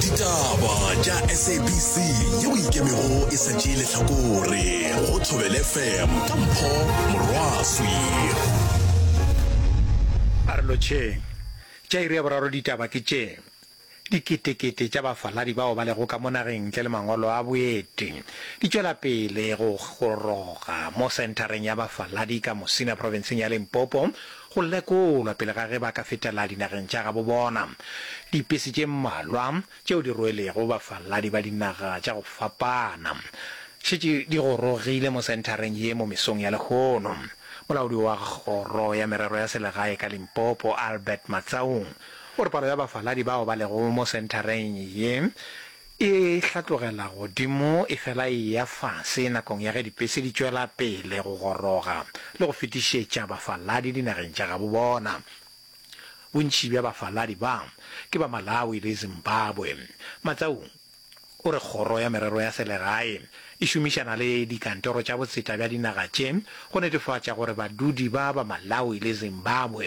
ditaba tša sabc yeo ikemego e sa tšee lehlakore go thobele fm ka mpho morwaswi a re lotšheng tša iri ya boraro ditaba ke tše diketekete tša bafaladi bao ba lego ka mo nageng ntle le mangwalo a boeti di tšwela pele go goroga mo senthareng ya bafaladi ka mosina profenseng ya limpopo go lekolwa pele ga ge ba ka fetela dinageng tša gabo bona. Dipesi tše mmalwa tšeo di rwelego bafaladi ba dinaga tša go fapana šetše di gorogile mo senthareng ye mo mesong ya lehono. Molaodi wa Kgoro ya Merero ya Selegae ka Limpopo, Albert Matsaung, o re palo ya bafaladi bao ba lego mo senthareng ye E hlatlogela godimo e fela e eya fase nakong ya ge dipese di tšwela pele go goroga le go fetišetša bafaladi dinageng tša gabo bona. Bontši bja bafaladi ba ke ba Malawi le Zimbabwe. Matsaung o re kgoro ya merero ya selegae e šomišana le dikantoro tša botseta bja dinaga tše go netefatša gore badudi ba ba Malawi le Zimbabwe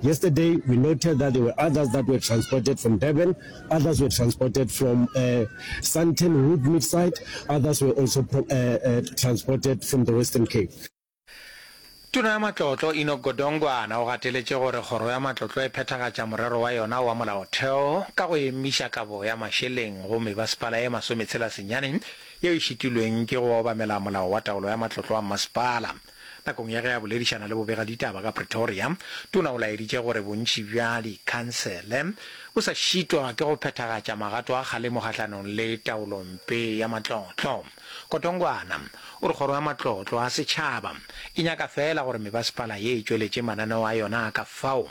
Yesterday we noted that there were others that were transported from Durban, others were transported from uh, Sandton Woodmead side, others were also uh, uh, transported from the Western Cape. Tona ya Matlotlo Enoch Godongwana o gateletše gore kgoro ya Matlotlo e phethagatša morero wa yona wa molaotheo ka go emiša kabo ya mašeleng go mebasepala e masometshela senyane yeo e šitilweng ke go obamela molao wa taolo ya matlotlo wa mmasepala. Nakong ya ge a boledišana le bobegaditaba ka Pretoria, Tona o laeditše gore bontši bja dikhansele bo sa šitwa ke go phethagatša magato a kgalemo kgahlanong le taolompe ya matlotlo. Kotongwana o re kgoro ya matlotlo a setšhaba e nyaka feela gore mebasepala ye e tšweletše mananeo a yona a ka fao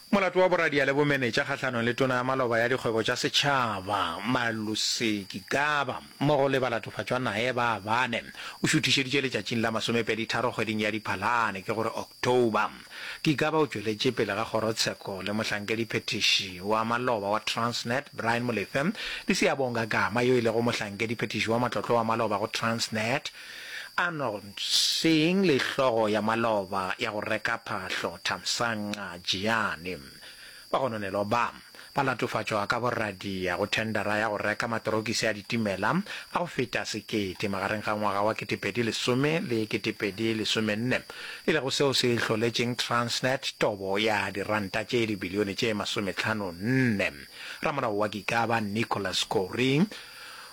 Molato wa boradia le bomenetša kgahlanong le Tona ya Maloba ya Dikgwebo tša Setšhaba, Malusi Gigaba, mmogo le balatofatšwa naye ba bane, o šuthišeditšwe letšatšing la masomepeditharo kgweding ya Diphalane, ke go re October. Gigaba o tšweletše pele ga kgorotsheko le mohlankedi phethiši wa maloba wa Transnet, Brian Molefe, le Siyabonga Gama, yo e lego mohlankedi phethiši wa matlotlo wa maloba go Transnet, Arnold, Seeing le hlogo ya maloba ya go reka phahlo Thamsanqa Jiyane. Bagononelo ba, ba latofatšwa ka boradia go thendera ya go reka matorokisi a ditimela a go feta sekete magareng ga ngwaga wa 2010 le 2014, e lego seo se hloletšeng Transnet tobo ya diranta tše dibilione tše masometlhano-nne. Ramolao wa Gikaba, Nicholas Kourie,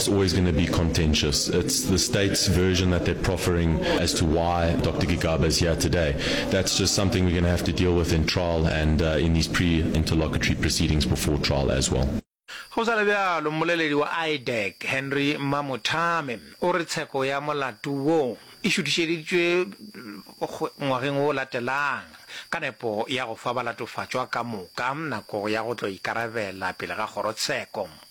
It's always going to be contentious. It's the state's version that they're proffering as to why Dr. Gigaba is here today. That's just something we're going to have to deal with in trial and uh, in these pre-interlocutory proceedings before trial as well. go sa le bjalo mmoleledi wa idec henry mamothame o re tsheko ya molato wo e šutišeditšwe ngwageng o latelang ka nepo ya go fa balatofatšwa ka moka nako ya go tlo ikarabela pele ga kgorotsheko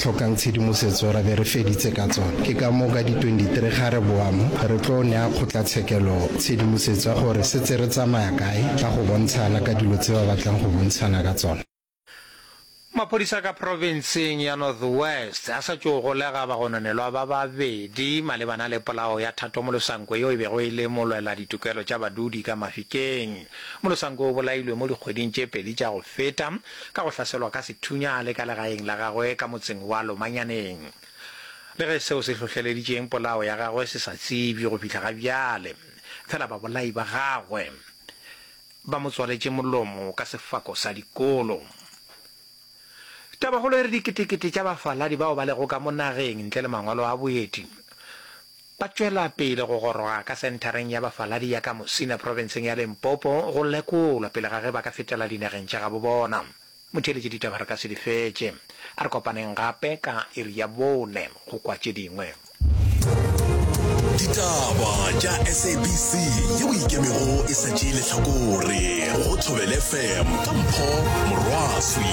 hlokang tshedimosetso ra be re feditse ka tsona. Ke ka moo ka di 23 ga re boa mo, re tlo nea kgotlatshekelo tshedimosetso ya gore setse re tsamaya kae ka go bontshana ka dilo tse ba batlang go bontshana ka tsona. Maphodisa ka profenseng ya North West a sa tšo golega bagononelwa ba babedi malebana le polao ya Thato Molosanko yo e bego e le molwela ditokelo tša badudi ka Mafikeng. Molosanko o bolailwe mo dikgweding tše pedi tša go feta ka go hlaselwa ka sethunya a le ka legaeng la gagwe ka motseng wa Lomanyaneng. Le ge seo se hlohleleditšeng polao ya gagwe se sa tsebjwe go fihla ga bjale, fela babolai ba gagwe ba mo tswaletše molomo ka sefako sa dikolo. Tabakgolo e re diketekete tša bafaladi bao ba lego ka mo nageng ntle le mangwalo a boeti Ba tšwela pele go goroga ka senthareng ya bafaladi ya ka Musina profenseng ya Limpopo go lekolwa pele ga ge ba ka fetela dinageng tša gabo bona. Motheeletši ditaba re ka se di fetše. A re kopaneng gape ka iri ya bone go kwa tše dingwe. Ditaba tša SABC yeo e ikemego e sa tšee lehlakore go Thobela FM ka mpho morwaswi.